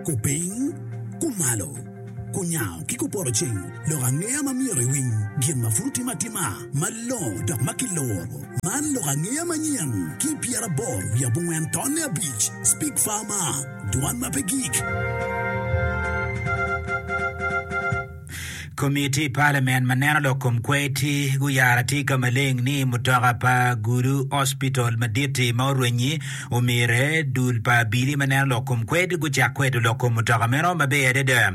Kupiny, kumalo, kunyango ki kupoto cing, lok angeya ma myero iwiny, gin ma pud otim atima malongo dok ma kiluro. Man lok angeya manyen ki i pyeraboro wiye abongwen tonne abic, Speak Farmer, Dwan ma pe gik. Komiti Palamen ma neno lok kom kwer-ti guyaro atika maleng ni mutoka pa Gulu Hospital madit-ti ma orwenyi omyere dul pa abili ma neno lok kom kwer-ti gucak kwedo lok kom mutoka meno maber adada.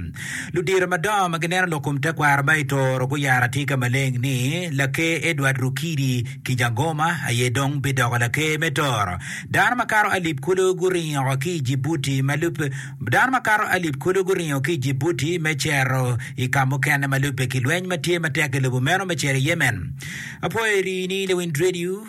Ludito madongo ma gineno lok kom tekwaro ma i Toro guyaro atika maleng ni Laker Edward Rukidi Kijangoma aye dong bidoko Laker me Toro. Dano makato alip kulu guringo ki i Jibuti ma lub Dano makato alip kulu guringo ki i Djibouti me cito i ka mukene ma lubbe ki lweny ma tye matek i lobo meno me cito i Yemen. Apwoyo iri ni lawiny Radio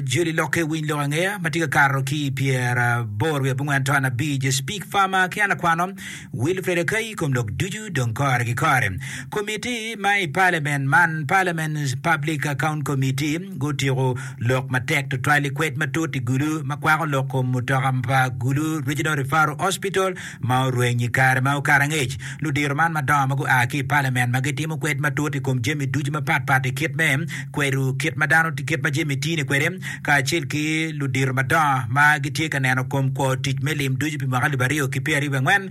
joli lok ki winy lok angeya ma tye ka kato ki i pyeraboro wiye abongwen taun abic. Speak Farmer ki an akwano Wilfred Akai kom lok ducu dong kore ki kore. Komiti ma i Parliament man, Parliament's Public Account Committee, gutiko Lok matek tutwal i kwed matut i Gulu ma kwako lok kom mutoka pa Gulu Regional Referral Hospital ma orweny i kare ma okato angec. Ludiro man madongo ma gua ki i Palamen ma gitimo kwed matut i kom jami ducu mapat pat i kit me kwedo kit ma dano kit ma jami tye-ni kwede kacel ki ludiro madongo ma gitye ka neno kom kwo tic me lim ducu pi mwaka alip aryo ki pyeraryo ki angwen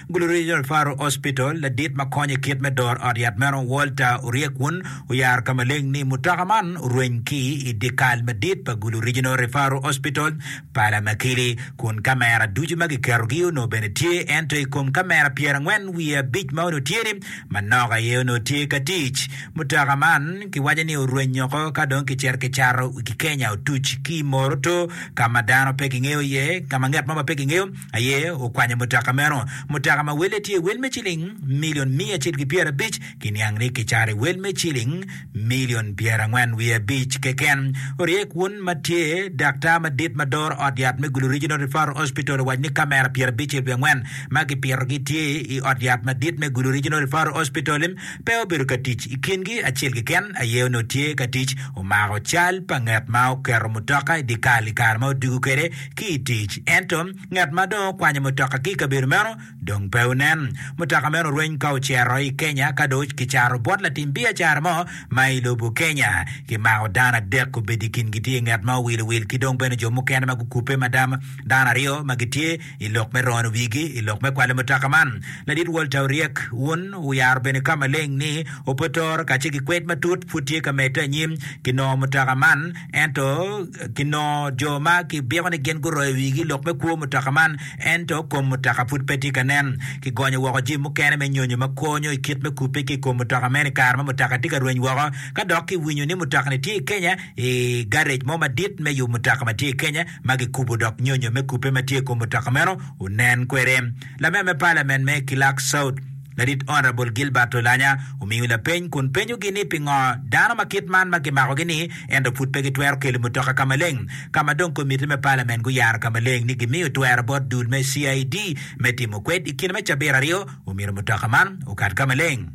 Gulu Regional Faro Hospital, ladit ma konyo i kit me doro ot yat meno, Walter Oryekun, oyaro ka maleng ni mutoka man orweny ki i dyekal madit pa Gulu Regional Referral Hospital, Palamakili, kun kamera ducu ma kiketogi onongo bene tye ento i kom kamera pyerangwen wiye abic ma onongo tye-ni, manok aye onongo tye ka tic. Mutoka man kiwaco ni orweny oko ka dong kicito kicato i Kenya otuc ki i Moroto ka ma dano pe kingeyo iye, ka ma ngat mo ma pe kingeyo, aye okwanyo mutoka meno. Mutoka ma welle tye wel me ciling milion miya acel ki pyerabic ki niang ni kicaro i wel me ciling milion pyerangwen wiye abic keken. Orye kun ma tye daktar madit ma doro ot yat me Gulu Regional Referral Hospital owaco ni kamera pyerabicel wiye angwen ma kipitogi tye i ot yat madit me Gulu Regional Referral Hospital pe obedo ka tic. I kingi acel keken aye onongo tye ka tic omako cal pa ngat ma oketo mutoka i dye kal i kare ma odwogo kwede ki i tic. Ento, ngat ma dong okwanyo mutoka ki i kabedo meno dong pe onen. Mutoka meno orweny ka ocito i Kenya ka dong kicato bot latim biacara mo ma i lobo Kenya. Kimako dano adek, obedo i kingi tye ngat ma owilo wil ki dong bene jo mukene ma gukubbe ma dano aryo ma gitye i lok me rono wigi i lok me kwalo mutoka man. Ladit Walter oryek un oyaro bene ka maleng ni ope toro kacel ki kwed matut pud tye ka medde anyim ki nongo mutoka man. ento kinongo jo ma kibiko ni gin guroyo wigi lok me kwo mutoka man ento kom mutoka pud pe tye ka nen. Kigonyo woko jami mukene me nyonyo ma konyo i kit me kubbe ki i kom mutoka meno i kare ma mutoka tye ka rweny woko. Ka dok kiwinyo ni mutoka-ni tye i Kenya i garec mo madit me yub mutoka ma tye i Kenya ma gikubo dok nyonyo me kubbe ma tye i kom mutoka meno onen kwede. Lame me palamen me Kilak South, Larit ot Rabol Gilbert Olanya omiyo lapeny kun penyogi ni pingo dano ma kit man ma kimakogi-ni ento pud pe gitwero kelo mutoka ka maleng ka ma dong komitti me palamen guyaro ka maleng ni gimiyo twero bot dul me CID me timo kwed i kine me cabit aryo omyero mutoka man okat ka maleng.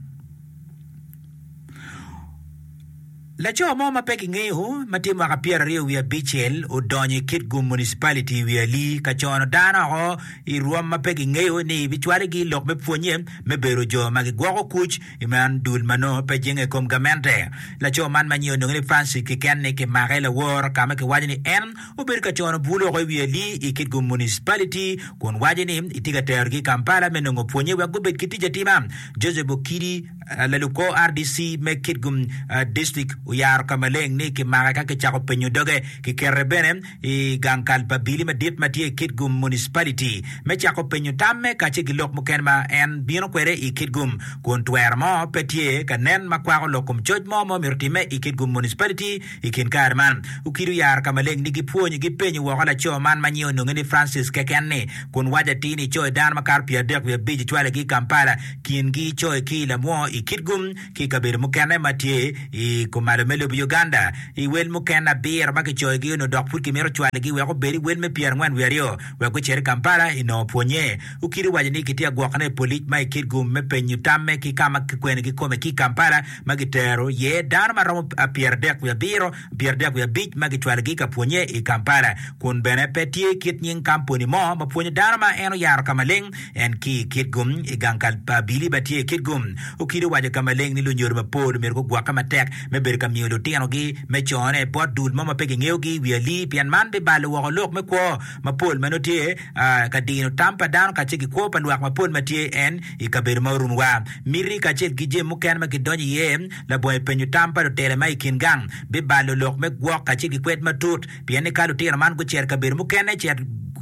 Laco mo ma pe kingeyo ma tye mwaka pyeraryo wiye abicel odonyo i Kitgum Municipality i Wiali ka cono dano woko i rwom ma pe kingeyo ni bicwale gi lok me pwonye me bedo jo ma gigwoko kuc i man dul ma nongo pe jenge i kom gamente. Laco man ma nyinge olunge ni Francis kiken ni kimake lawor ka ma kiwaco ni en obedo ka cono bul woko i Wiali i Kitgum Municipality kun waco ni itye ka terogi i Kampala me nongo pwonye wek gubed ki tic atima. Joseph Okidi Lalukor RDC me Kitgum District oyaro ka maleng ni kimake ka kicako penyo doge. Kikete bene i gang kal pa Bili madit ma tye i Kitgum Municipality me cako penyo tamme kacel ki lok mukene ma en bino kwede i Kitgum kun twero mo pe tye ka nen ma kwako lok kom coc mo ma omito timme i Kitgum Municipality I kin kare man, okid oyaro ka maleng ni gipwony, gipenyo woko laco man ma nyinge ononge ni Francis keken ni, kun waco atir ni coyi dano makato pyeradek wiye abic ocwalogi i Kampala, kingi coyi ki i Lamwo, i Kitgum, ki i kabedo mukene ma tye i kumalo me lobo Uganda. I wel mukene abiro ma kicoyogi onongo dok pud kimito cwalogi wek obed i wel me pyerangwen wiye aryo wek gucit i Kampala i nongo pwonye. Okid owaco ni kitye agwokone i polic ma i Kitgum me penyo tamme ki ka ma kikwenogi kome ki i Kampala, ma gitero iye dano ma romo pyeradek wiye abiro, pyeradek wiye abic ma gicwalogi ka pwonye i Kampala. Kun bene pe tye kit nying kamponi mo ma pwonyo dano ma en oyaro ka maleng en ki i kitgu. I gang ka biliba tye i kitgu, Okido owaco ka maleng ni lunyodo mapol omyero gugwokke matek me bedo ka miyo lutinogi me cone bot dul mo ma pe gingeyogi i wi alii pien man bibalo woko lok me kwo mapol ma nongo tye ka dino tam pa dano kacel ki kwo pa lwak mapol ma tye en I kabedo ma orumu wa, miti kacel ki jami mukene ma kidonyo iye labongo i penyo tam pa lutela ma i kin gang bibalo lok me gwok kacel ki kwed matut, pien ni ka lutino man gucito i kabedo mukene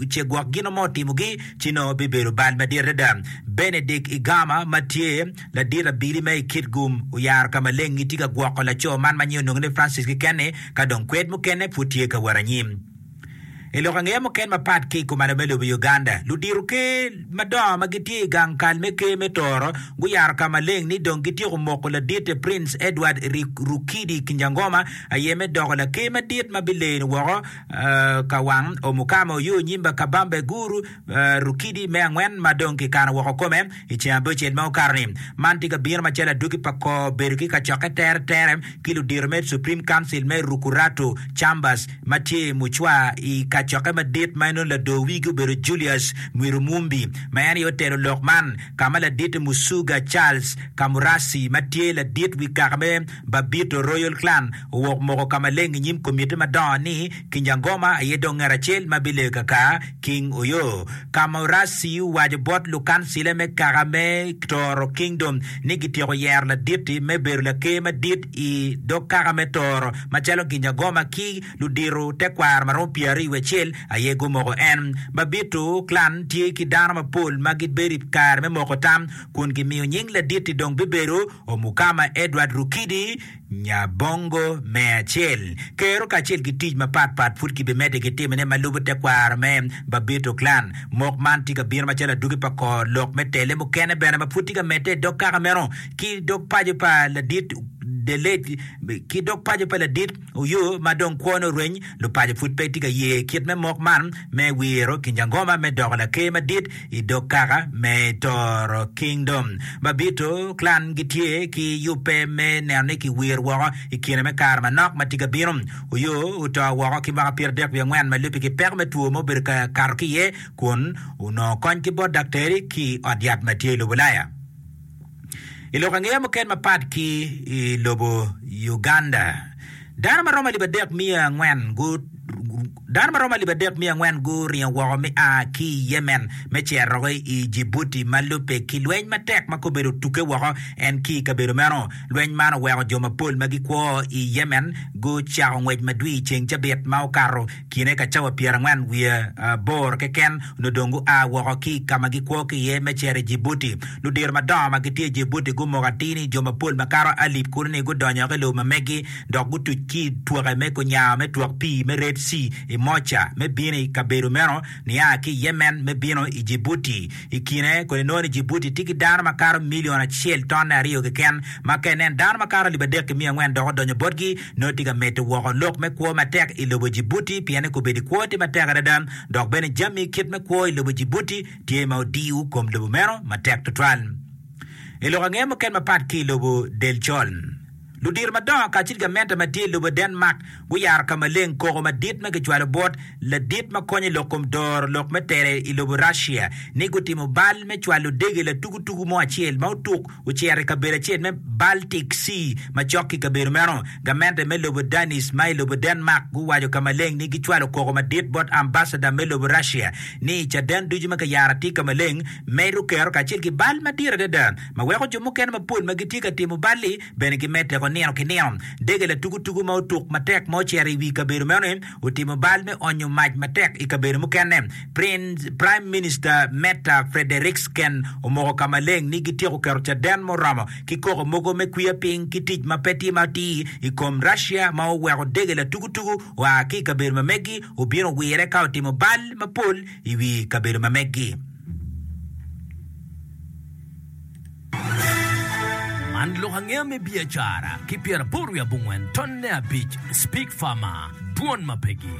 ce gwok gino mo otimogi, ci nongo bibedo bal madit adada. Benedict Igama ma tye ladit abili me i Kitgum oyaro ka maleng gitye ka gwoko laco man ma nying ononge ni Francis keken-ni ka dong kwed mukene pud tye ka wot anyim. I lok angeya muken mapat ki i kumalo me lobo Uganda, ludito ker madongo ma gitye i gang kal me ker me Tooro guyaro ka maleng ni dong gityeko moko laditte Prince Edward Rukidi Kinjangoma aye me doko laker madit ma bileno woko ka wang Omukama Oyo Onyimba Kabambe Guru Rukidi me angwen ma dong kikano woko kome i ceng abicel ma okato-ni. Man tye ka bino macalo adwogi pa kor bedo ki kacokke teretere ki ludito me Supreme Council me Rukuratu, Chambers, ma tye i Mucwa i kacokke madit ma en nongo lador wigi obedo Julius Mwirumumbi ma en aye otelo lok man, ka ma ladite Musuga Charles Kamurasi ma tye ladit wi kaka me Babito Royal Clan owok moko ka maleng i nyim komitti madongo ni, Kinyangoma aye dong ngat acel ma bileyo kaka King Oyo. Kamurasi owaco bot lukancile me kaka me Toro Kingdom ni gityeko yero ladit-ti me bedo laker madit i dog kaka me Toro macalo Ginyangoma ki ludito tekwaro ma romo pyeraryo wiye acel aye gumoko en. Babito clan tye ki dano mapol ma gibedo i kare me moko tam kun gimiyo nying ladit-ti dong bibedo Omukama Edward Rukidi Nya bongo me acel. Kero kacel ki tic mapat pat pud kibimedde ki timone ma lubo tekwaro me Babito Clan. Mok man tye ka bino macalo adwogi pa kor lok me tele mukene bene ma pud tye ka medde i dog kaka meno ki dog paco pa ladit Delage ki dog paco pa ladit Oyoo ma dong kwone oreny lupaco pud pe tye ka ye kit me mok man me wiro Kinyangoma me doko laker madit i dog kaka me Toro Kingdom. Mabito, Klan gitye ki yubbe me neno ni kiwiro woko i kine me kare manok ma tye ka bino. Oyo oto woko ki mwaka pyeradek wiye angwen ma lubbe ki peko me two ma obedo ka kato ki iye kun onongo kony ki bot daktari ki i ot yat ma tye i lobo Ulaya. I lok angeya muken mapat ki i lobo Uganda, dano ma romo alip adek miya angwen guringo woko me a ki i Yemen me cerogi i Djibouti ma lubbe ki lweny matek ma kobeddi otuge woko en ki i kabedo meno. Lweny man oweko jo mapol ma gikwo i Yemen gucako ngwec madwir i ceng cabit ma okato. Kine ka cawa pyerangwen wiye aboro keken onongo dong gua woko ki i ka ma gikwo ki iye me cito i Jibuti. Ludito madongo ma gitye i Jibuti gumoko atir ni jo mapol makato alip kunu-ni gudonyo ki i lobo ma megi dok gutuc ki i twoke me kunyango me twok pii me Red Sea i Mocha me bino i kabedo meno nia ki i Yemen me bino i Jibuti. I kine koni nongo ni Jibuti tye ki dano makato milion acel tonne aryo keken ma ka inen dano makato alip adek ki miya angwen dok odonyo botgi, nongo tye ka medo woko lok me kwo matek i lobo Djibouti pien kobedi kwo tye matek adada dok bene jami kit me kwo i lobo Djibouti tye ma odiyo kom lobo meno matek tutwal. I lok ange mukene mapat ki i lobo Delchol, ludito madongo kacel ki gamente ma tye i lobo Denmark guyaro ka maleng koko madit ma kicwalo bot ladit ma konyo i lok kom doro lok me tere i lobo Russia ni gutimo bal me cwalo dege latukutuku mo acel ma otuk ocito i kabedo acel me Baltic Sea macok ki kabedo meno. Gamente me lobo Danish ma i lobo Denmark guwaco ka maleng ni gicwalo koko madit bot ambasada me lobo Russia ni caden ducu ma kayaro atir ka maleng medo kero kacel ki bal madit adada ma weko jo mukene mapol ma gitye ka timo bal-li bene gimedde woko nino ki nino. Dege latukutuku ma otuk matek ma ocito i wi kabedo meno-ni otimo bal me onyo mac matek i kabedo mukene. Praim Minista Metta Frederiksen omoko ka maleng ni gityeko keto caden muromo ki koko mogo me kwiya piny ki tic ma pe time atir i kom Russia ma oweko dege latukutuku oa ki i kabedo ma megi obino wire ka otimo bal mapol i wi kabedo ma megi. Man lok angeya me biacara ki pyeraboro wiye abongwen tonne abic Speak Farmer, Dwon ma pegi.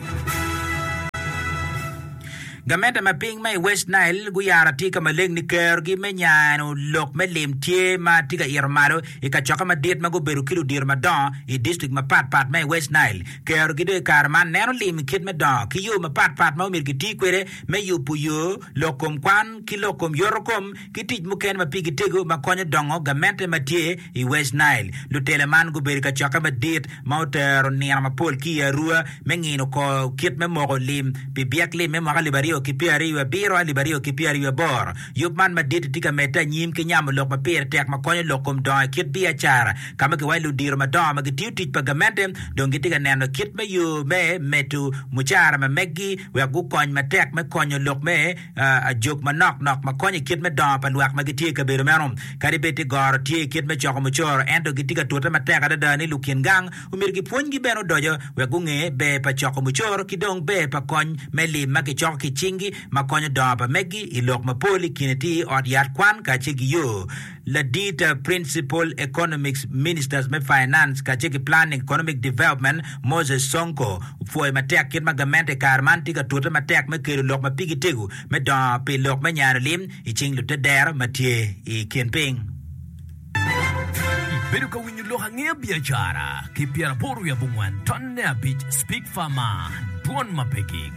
Gamente ma piny ma i West Nile guyaro atika maleng ni kerogi me nyano lok me lim tye ma tye ka ito malo i kacokke madit ma gubedo ki ludito madongo i distrik mapat pat ma i West Nile. Kerogi dong i kare man neno lim kit me dongo ki yo mapat pat ma omyero giti kwede me yubo yo, lok kom kwan, ki lok kom yotokom. ki tic mukene ma pigi tego ma konyo dongo gamente ma tye i West Nile. Lutela man gubedo i kacokke madit ma otero nino mapol ki i Arua me ngino kor kit me moko lim pi byek lim me mwaka alip aryo ki pyera aryo wiye abiro alip aryo ki pyera aryo wiye aboro. Yub man madit-ti tye ka medde anyim ki nyamo lok ma pire tek ma konyo lok kom dongo i kit biacara ka ma giwaco ludito madongo ma gitiyo tic pa gamente dong gitye ka neno kit me yo me medo mucara ma meggi wek gukony matek me konyo lok me ajok manok nok ma konyo i kit me dongo pa lwak ma gitye i kabedo meno. Kadi bed ni goro tye i kit me coko mucoro, ento gitye ka tute matek adada ni lukin gang omyero gipwonygi bene odoco wek gunge ber pa coko mucoro ki dong ber pa kony me lim ma kicoko ki i cinggi ma konyo dongo pa meggi i lok mapol i kine tye ot yat kwan kacel ki yo Ladita, Principal Economics Ministers me Finance kacel ki Planning Economic Development, Moses Sonko, opwoyo matek kit ma gamente i kare man tye ka tute matek me kelo lok ma pigi tego me dongo pi lok me nyaro lim i cing lutedero ma tye i kin piny. Ibedo ka winyo lok angeya biacara ki pyera aboro wiye abongwen ton ne abic speak far ma dwon ma pe gik.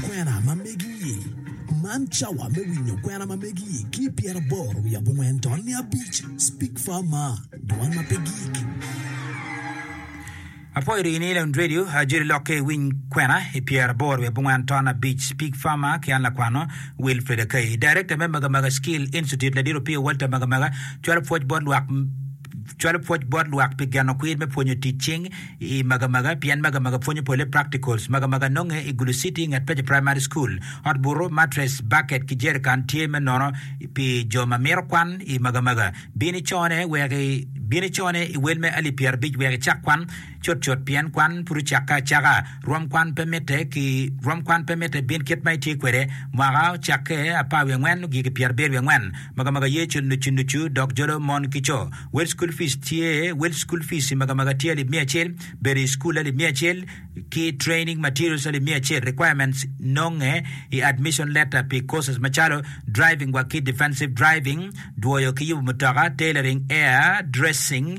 Kwena ma megi-i. Man cawa me winyo kwena ma megi-i ki i pyeraboro wiye abongwen to niya abic. Speak Far Mar, Dwan ma pe Gik. Apwoyo dong in i Leon Radio, ajoli lok ki i Winy Kwena i pyeraboro wiye abongwen to niya abic. Speak Far Mar ki an lakwano Wilfred Akai. Darekta me Magamaga Skill Institute, Ladit Opio Walter Magamaga, cwalo pwoc bot lwak. cwalo pwoc bot lwak pi geno kwir me pwonyo tic cing i Magamaga pien Magamaga pwonyo pole practicals. Magamaga nonge i Gulu City nget Peche Primary School. Ot butu, matres, baket ki jerikan tye me nono pi jo ma mito kwan i Magamaga. Bin icone wek i Bin icone i wel me alip pyerabic wek icak kwan. Cutcut pien kwan pud ocakke acaka, rwom kwan pe mitte ki rwom kwan pe mitte bin kit ma itye kwede mwaka ocakke apar wiye angwen ogiki pyera abiro wiye angwen magamaga ye cul nucu nucu dok jolo mon ki co wel school fees tye wel school fees i magamaga tye alip miya acel bedo i school alip miya acel ki training materials alip miya acel requirements nonge i admission letter pi courses macalo driving wa ki defensive driving dwoyo ki yubu mutoka tailoring air dressing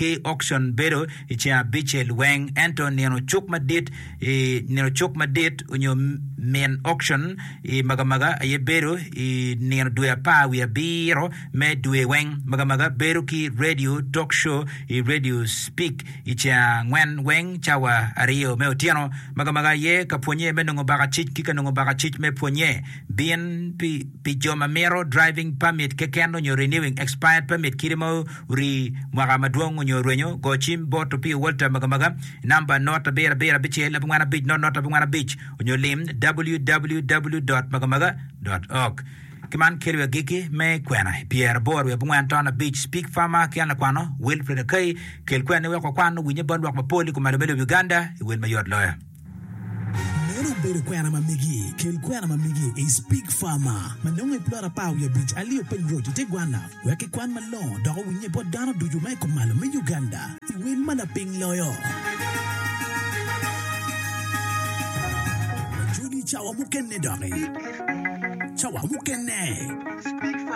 ki okcon bedo i ceng abicel weng, ento nino cuk madit, i nino cuk madit onyo min okcon i magamaga aye bedo i nino dwe apar wiye abiro me dwe weng. Magamaga bedo ki radio talk show i Radio Spik i ceng angwen weng cawa aryo me otyeno. Magamaga aye ka pwonye me nongo bakacic ki ka nongo bakacic me pwonye. Bin pi jo ma mito driving permit keken onyo renewing expired permit kite ma Ri mwaka madwong onyo rwenyo, go cim bot Opio Walter Magamaga i namba not abiro abiro abicel abongwana abic not not abongwana abic onyo lim www.magamaga. Org. Ki man keliwa agikki me kwena i pyeraboro wiye abongwen ton abic Speak Farmer ki an lakwano Wilfred Akai, kel kweni wek wakwan owinye bot lwak mapol i kom alome lobo Uganda i wel mayot loyo. Meno obedo kwena ma megi. Kel kwena ma megi i Spig Farmer ma nongo i plot apar wiye abic alio Peng Road i te Gwana wek kikwan malongo dok owinnye bot dano ducu ma i kumalo me Uganda i wel ma lapiny loyo. Wajoli i cawa mukene doki. Cawa mukene.